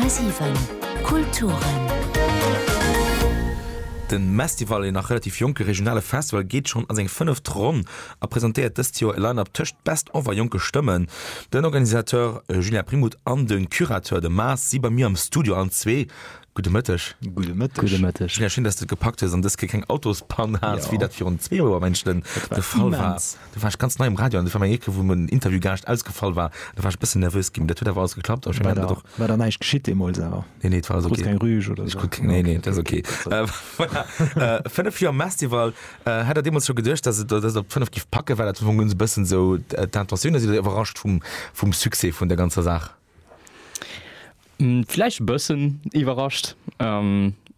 10,7 Kulturen. De Mestival, een nach relativ jonke regionale Festival, geet schonn a seng fënneft Ronn a presentéiert dëst Joer e Line-Up tëscht Best of a jonke Stëmmen. Den Organisateur Julien Primout an de Curateur de Maas si bei mir am Studio. Allen zwee gudde Mëtteg. Gudde Mëtteg. Julien, schéin, dass de et gepackt hues an dës Kéier keng Autospann hat, wéi dat virun zwee Joer, mengen ech, de Fall war. Do war ech ganz nei um Radio an do war meng Eke wou en Interview garscht ausgefall war, do war ech e bëssen nervös ginn, mee dat huet awer alles geklappt. An ech mengen dat och. War da näischt geschitt deemools awer? Nee, nee, et war alles okay. Krut keng Rüge oder sou? Nee, nee, dat ass okay. Voilà. Fënnef Joer Mestival, hat Der deemools scho geduecht, datt Der et op fënnef giff packen? War dat am Fong e bëssen esou d'Intentioun oder sidd Der iwwerrascht vum Succès vun der ganzer Saach? Vläicht e bëssen iwwerrascht.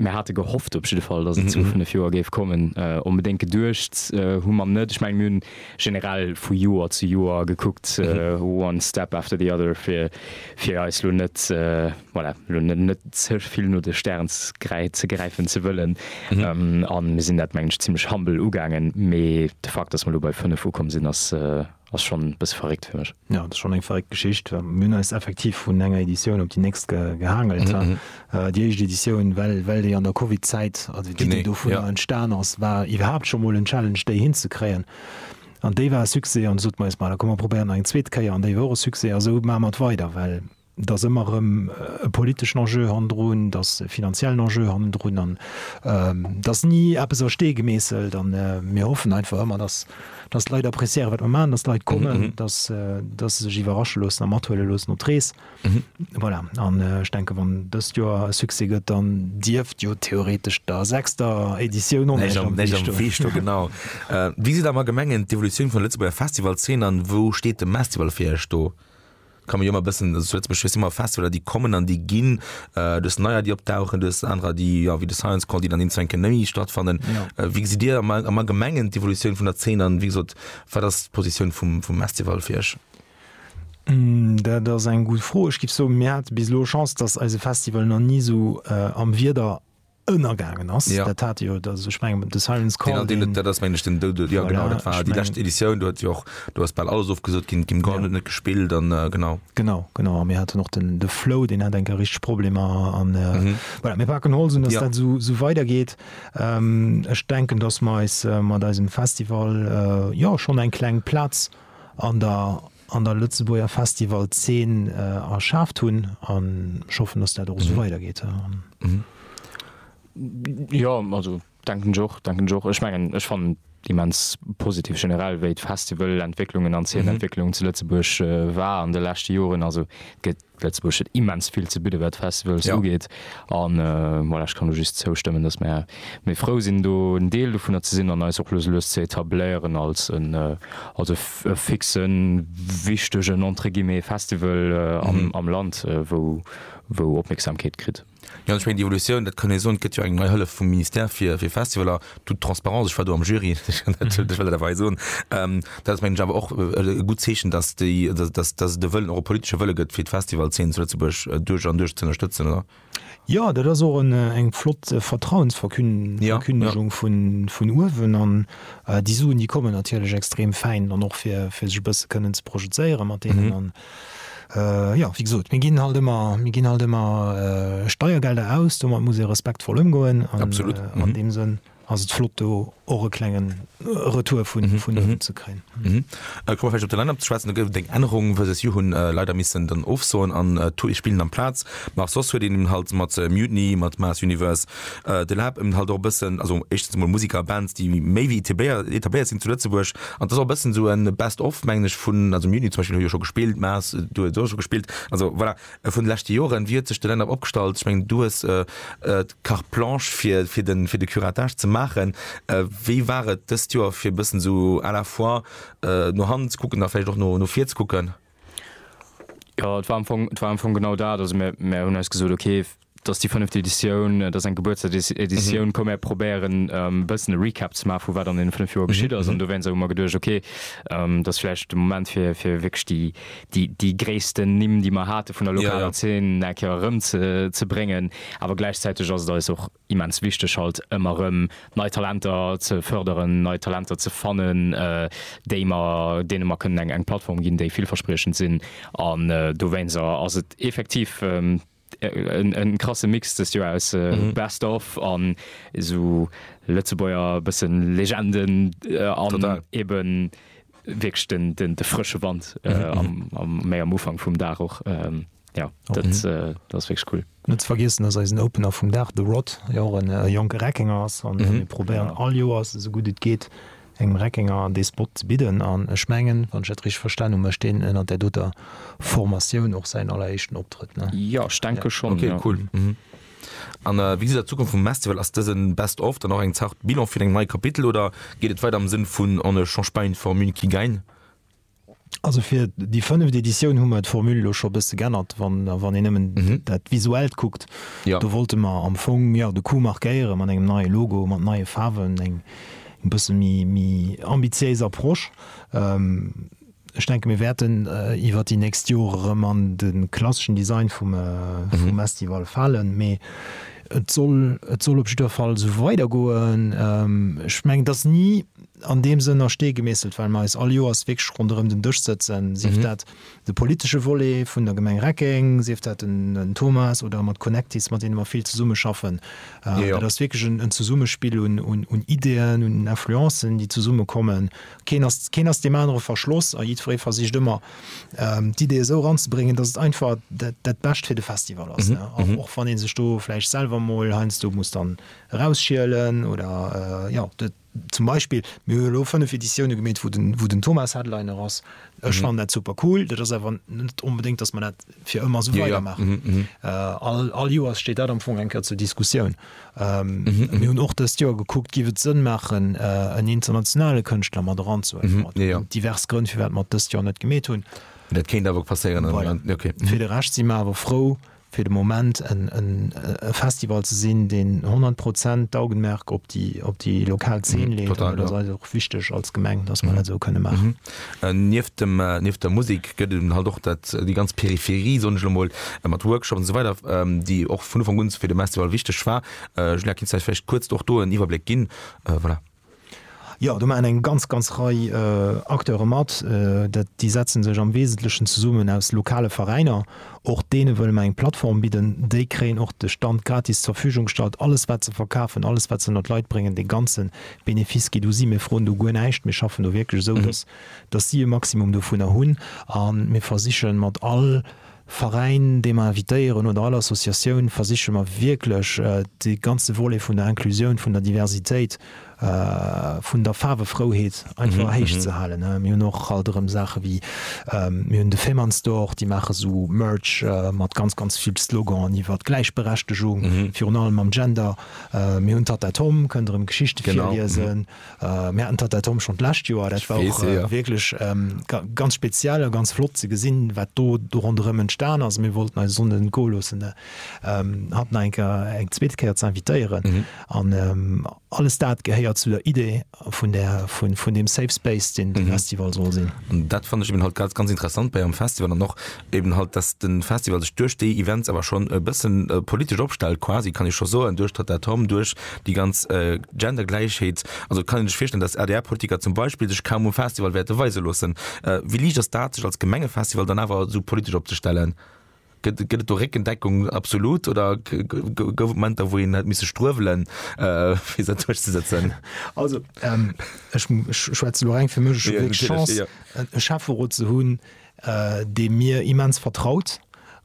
Mir hate gehofft op jidde Fall, datt et zu 5 Joer géif kommen. Onbedéngt geduecht hu mer net. Ech mengen, mir hunn generell vu Joer zu Joer gekuckt, one step after the other, fir fir eis lo net, voilà, lo net net ze vill no de Stären ze gräifen ze wëllen. A mir sinn dat, mengen ech, zimmlech humble ugaangen. Mee de Fakt, datt mer elo bei 5 ukomm sinn, ass, Ass schonn e bësse verréckt fir mech. Jo, dat ass schonn eng verréckt Geschicht. Mir hunn eis effektiv vun enger Editioun op déi nächst gehaangelt. Déi éischt Editioun, well well déi an der Covid-Zäit, also d'Iddi dovunner, entstan ass, war iwwerhaapt scho mol en Challenge, déi hinzekréien. An déi war e Succès. An du sot mer, Jes, ma da komm, mer probéieren nach eng zweet Kéier. An déi war och e Succès. A sou maache mer et weider, well Et ass ëmmer erëm e politeschen Enjeu hannendrun, et ass e finanziellen Enjeu hannendrun an et ass ni eppes a Stee gemeesselt. A mir hoffen einfach ëmmer, datt d'Leit appréciéieren, wat mer maachen, datt d'Leit kommen, datt se sech iwwerrasche loossen a mathuele loossen op d'Rees. Voilà, an ech denken, wann dëst Joer e Succès gëtt, dann dierft jo theoretesch der sechster Editioun och näischt am Wee stoen. Genau. Wéi sidd Der mer Gemengen d'Evolutioun vun der Lëtzebuerger Festivalzeen an wou steet de Mestival fir Iech do? Kann mir jo ëmmer bëssen, also zu Lëtzebuerg hues du ëmmer Festivaler déi kommen an déi ginn, du hues neier déi opdauchen, du hues anerer déi jo wéi de Science Call déi dann eens enke méi stattfannen. Wéi gesitt dir am am allgemengen d'Evolutioun vun der Zeen an wéi gesot wat ass d'Positioun vum vum Estival fir iech? Dat ass eng gutt Fro. Ech géif soen mir hate bis elo Chance, datt eise Festival nach ni esou am Wieder ënnergaangen ass, dat hat jo dat ech mengen de Siren's Call, deen dat ass meng ech den Doud, jo genau dat war déi lescht Editioun, do huet jo och do ass bal alles ofgesot ginn, d'Kim Gordon huet net gespillt an genau. Genau, genau a mir haten och den de Flo, deen hat eng Kéier richteg Problemer an voilà mir paken Holz un, datt dat esou esou weidergeet. Ech denken, datt mer eis mat eisem Festival jo schonn eng kleng Plaz an der an der Lëtzebuerger Festival-Zeen erschaaft hunn. An ech hoffen, datt dat och esou weidergeet. Jo, also denken ech och, denken ech och. Ech mengen, ech fannen et immens positiv generell, wéi d'Festival-Entwécklungen an d'Zeen-Entwécklung zu Lëtzebuerg war an de leschte Joren. Also et gëtt Lëtzebuerg huet immens vill ze bidde wat Festivals ugeet a voilà, ech kann do just zoustëmmen, datt mer méi frou sinn do en Deel dovunner ze sinn an eis och lues lues ze etabléieren als en als e fixe wichtegen entre guillemets Festival am Land wou wou Opmierksamkeet kritt. Jo, ech mengen, déi Evolutioun, dat kann ee soen, et gëtt jo eng nei Hëllef vum Ministère fir Festivaler, toute transparence, ech war do am Jury, ech kann dat ech well dat awer hei soen. Dat ass mengen ech awer och e gutt Zeechen, datt déi, datt et de Wëllen, och e politesche Wëlle gëtt, fir d'Festivalszeen zu Lëtzebuerg duerch an duerch z'ënnerstëtzen, oder? Jo, dat ass och eng flott Vertrauensverkündegung vun uewen an déi Suen, déi kommen natierlech extrem fäin dann och, fir sech e bësse kënnen ze projezéiere mat deenen. Jo, wéi gesot, mir ginn halt ëmmer, mir ginn halt ëmmer Steiergelder aus, domat muss ee respektvoll ëmgoen. Absolut. An, an deem Sënn ass et flott, do och e klengen Retour vun, vun hinnen ze kréien. Kommen mer vläicht op de Line-up ze schwätzen. Do gouf et eng Ännerung, versus you, hunn leider missen dann ofsoen an Tool spilen amplaz. Mä och soss huet een halt mat Mutiny, mat Mars Universe De Lab ëmmt halt och e bëssen, also éischtens emol Musiker a Bands, déi méi wéi etabléiert sinn zu Lëtzebuerg. An et ass och e bëssen sou e Best of, mengen ech, vun, also am Juni zum Beispill hu jo scho gespillt, Maas, du hues och scho gespillt, also voilà, vun de leschte Joren, wéi huet sech de Line-up opgestallt? Ech mengen, du hues d'Carte blanche fir, fir de, fir de Curatage ze maachen. Wéi war et dëst Joer fir e bëssen sou à la fois no hannen ze kucken a vläicht och no vir ze kucken? Jo, et war am Fong, et war am Fong genau dat. Also mär, mär hunn eis gesot, okay, dat ass déi fënneft Editioun, et ass eng Gebuertstags-Editioun, komm mär probéieren e bëssen e Recap ze maachen, vu wat an deene fënnef Joer geschitt ass. An dowéinst hu mer geduecht, okay, dat ass vläicht de Moment fir, fir wierklech déi, déi, déi gréissten Nimm, déi mer hate vun der lokaler Zeen, eng Kéier erëmzebréngen. Awer gläichzäiteg ass et eis och immens wichteg halt ëmmer rëm nei Talenter ze fërderen, nei Talenter ze fannen, déi mer, deene mer kënnen eng eng Plattform ginn, déi villverspriechend sinn an dowéinser ass et effektiv en krasse Mix dëst Joer aus Best of an esou Lëtzebuerger bëssen Legenden an eben wierklech den de frësche Wand am méi am Ufank vum Dag och. Ja, dat ass wierklech cool. Net ze vergiessen ass eisen Opener vum Dag, de Rod, dee och e jonke Reckenger ass. An mir probéieren all Joers, esou gutt et geet, engem Reckenger dee Spot ze bidden. An ech mengen, wann ech dat richteg verstan hunn, mécht deen ënnert där doter Formatioun och säin alleréischten Optrëtt. Jo, ech denke schonn. Ok, cool. An wéi gesitt der d'Zukunft vum Mestival? Ass dëse Best of dann och eng Zart Bilan fir deng nei Kapitel oder geet et weider am Sënn vun On ne change pas une formule qui gagne? Also fir déi fënneft Editioun hu mer d'Formule elo scho e bësse geännert, wann wann een nëmmen dat Visuellt kuckt. Do wollte mer am Fong jo de Coup markéiere mat engem neie Logo, mat neie Faarwen, eng eng bësse méi méi ambitiéis Approche. Ech denke mir wäerten iwwer déi nächst Jore rëm an de klasseschen Design vum vum Estival falen, mee et soll et soll op jiddwer Fall esou weidergoen. Ech mengen et ass ni. an deem Sënn a Stee gemeesselt, well mer eis all Joers wierklech ronderëm den Dësch sëtzen, sief dat de politesche Volet vun der Gemeng Reckeng, sief dat den Thomas oder mat Connectis, mat deene mer vill zesummeschaffen. Dat ass wierklech en Zesummespill un Ideeën, un Influencen, déi zesummekommen. Keen ass, keen ass deem anere verschloss a jiddweree versicht ëmmer, d'Ideeë esou eranzebréngen, datt et einfach dat Bescht fir de Festival ass, och wann ee sech do vläicht selwer mol heiansdo muss dann erausschielen oder, jo. Zum Beispill, mir hunn elo 5 Editioune gemeet, wou den Thomas Headliner ass. Ech fannen dat super cool. Dat ass awer net onbedéngt, datt mer dat fir ëmmer esou weidermaachen. All Joers steet dat am Fong eng Kéier zur Diskussioun. Mir hunn och dëst Joer gekuckt, Giff et Sënn maachen, en internationale Kënschtler mat eranzehuelen? Et ginn divers Grënn, firwat mer et dëst Joer net gemeet hunn. Fir de Rescht si mer awer frou, fir de Moment e Festival ze sinn, deen 100 Prozent d'Augenmerk op déi lokal Zeen leet. Dat ass eis och wichteg als Gemeng, datt mer dat esou kënne maachen. Nieft der Musek gëtt et halt och déi ganz Peripherie, soen ech elo mol, mat Workshops an esou weider, déi och vun Ufank un fir de Mestival wichteg war. Julia, kennst du eis vläicht kuerz och do en Iwwerbléck ginn? Voilà. Jo, do maachen eng ganz, ganz Rei Acteure mat. Déi setzen sech am Wesentlechen zesummen aus lokale Veräiner. Och deene wëlle mer eng Plattform bidden. Déi kréien och de Stand gratis zur Verfügung gestallt. Alles, wat se verkafen, alles, wat se ënner d'Leit bréngen, dee ganze Benefice geet u si. Mir froen do guer näischt. Mir schaffen do wierklech esou, dass si e Maximum dovunner hunn. A mir versiche mat all Veräin, dee mer invitéieren, oder all Associatioun, versiche mer wierklech dee ganze Volet vun der Inclusioun, vun der Diversitéit, vun der Faarwefrouheet einfach héich ze halen. Mir hunn och halt erëm Saache wéi, mir hunn de Fehmarnstore, déi maache sou Merch mat ganz, ganz vill Sloganen iwwert Gläichberechtegung, virun allem mam Gender. Mir hunn d'Tatta Tom, kënnt erëm Geschichte virliesen. Mir haten d'Atom schonn d'lescht Joer, dat war och wierklech ganz speziell a ganz flott ze gesinn, wat do do ronderëm entstan ass. Mir wollten eis Sonde net goe loossen, hatt nach eng Kéier, eng zweete Kéier ze invitéieren. An alles dat gehéiert zu der Idee vun där, vun deem Safe Space, deen de Festival soll sinn. Dat fannen ech eben halt ganz, ganz interessant bei engem Festival an och, eben halt dass den Festival sech duerch déi Events awer schon e bëssen politesch opstellt quasi kann ee scho soen duerch d'Tattatom duerch déi ganz Gendergläichheet also kann een sech virstellen dass adr Politiker zum Beispill sech kaum um Festival wäerte weise loossen. Wéi liicht ass dat sech als Gemengefestival dann awer esou politesch opzestellen? Gëtt gëtt et do Réckendeckung absolut oder gouf et Momenter wou een hätt misse struewelen fir se duerch ze sëtzen? Also ech schwätzen elo reng fir mech, ech hu d'Chance e Schäfferot ze hunn, dee mir immens vertraut,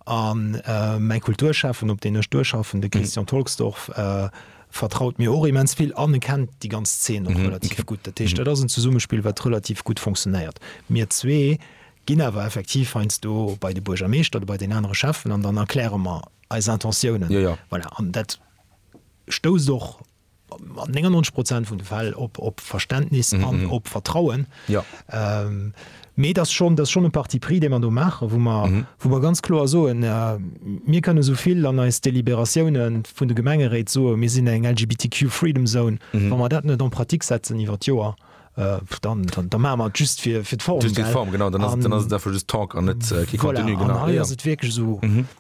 a mäi Kulturschäffen, op deen ech duerchschaffen, de Christian Tolksdorf, vertraut mir och immens vill an e kennt déi ganz Zeen och relativ gutt. Dat heescht, dat ass en Zesummespill, wat relativ gutt funktionéiert. Mir zwee ginn awer effektiv heiansdo bei de Buergermeeschter oder bei den anere Schäffen an dann erkläre mer eis Intentiounen. Voilà, an dat stousst och. an 99 Prozent vun de Fäll op, op Verständnis an op Vertrauen. Ja. Mee dat ass schonn, dat ass schonn e Parti pris, dee mer do maachen, wou mer, wou mer ganz kloer soen, Mir kënnen esou vill an eis Deliberatioune vun de Gemengeréit soen, mir sinn eng LGBTQ-Freedom Zone, wa mer dat net en pratique setzen iwwer d'Joer, da maache mer et just fir d'Form. Just fir d'Form, genau. Dann ass et einfach just Talk an net kee Contenu. Voilà, an hei ass et wierklech esou,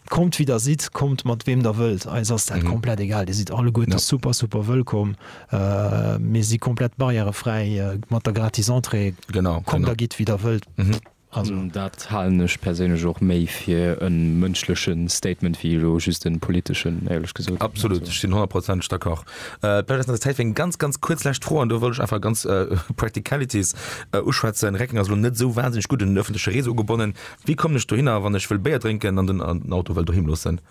kommt wéi der sidd, kommt mat weem der wëllt, eis ass dat komplett egal. Dir sidd alleguerte super, super wëllkomm. Mir si komplett barrièrefräi mat der gratis Entrée. Genau. Kommt a gitt wéi der wëllt. Dat halen ech perséinlech och méi fir e mënschleche Statement wéi elo just e politeschen, éierlech gesot. Absolut, ech sinn honnertprozenteg d'accord. Vläicht ass nach Zäit fir eng ganz, ganz kuerz lescht Fro, an do wëll ech einfach ganz practicalities uschwätzen. Reckeng ass elo net esou wahnsinneg gutt un den öffentliche Réseau ugebonnen. Wéi kommen ech dohinner, wann ech wëll Béier drénken an den Auto wëll doheem loossen?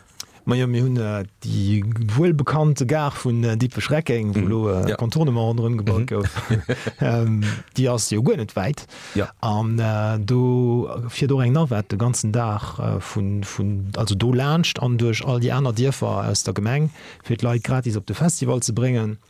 Majo, mir hunn déi wuel bekannte Gare vun Dippech-Reckeng, wou elo e Contournement ronderëm gebaut gouf, déi ass jo guer net wäit. An do fiert och eng Navette de ganzen Dag vun, vun, also do laanscht an duerch all déi aner Dierfer aus der Gemeng, fir d'Leit gratis op de Festival ze bréngen.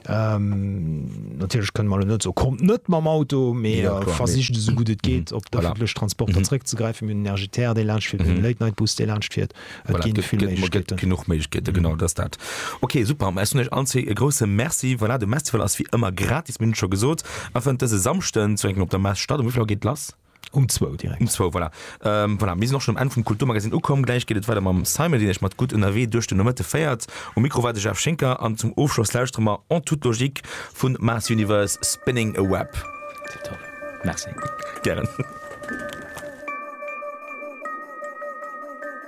Natierlech kënne mer elo net soen, kommt net mam Auto, mee versicht esou gutt et geet op d'ëffentlech Transporter zréckzegräifen. Mir hunn den RGTR, dee laanschtfiert, mir hunn de Late Night Bus, dee laanschtfiert. Et gi vill Méiglechkeeten. Et gëtt genuch Méiglechkeeten, genau, dat ass dat. Ok, super. Ech soen iech allen zwee e grousse Merci. Voilà, de Mestival ass wéi ëmmer gratis, mir hunn et scho gesot, a fënnt dëse Samschden zu Réckeng op der Mess statt. Um wéi vill Auer geet lass? Um zwou direkt. Um zwou, voilà. Ähm, voilà, mir sinn och schonn um Enn vum Kulturmagazin ukomm. Gläich geet et weider mam Simon, deen iech mat Gutt ënnerwee duerch den Nomëtte féiert. Um Mikro war de Jeff Schinker an zum Ofschloss lauschtere mer En toute logique vu Mars Universe, Spinning a Web. Tipptopp. Merci. Gären.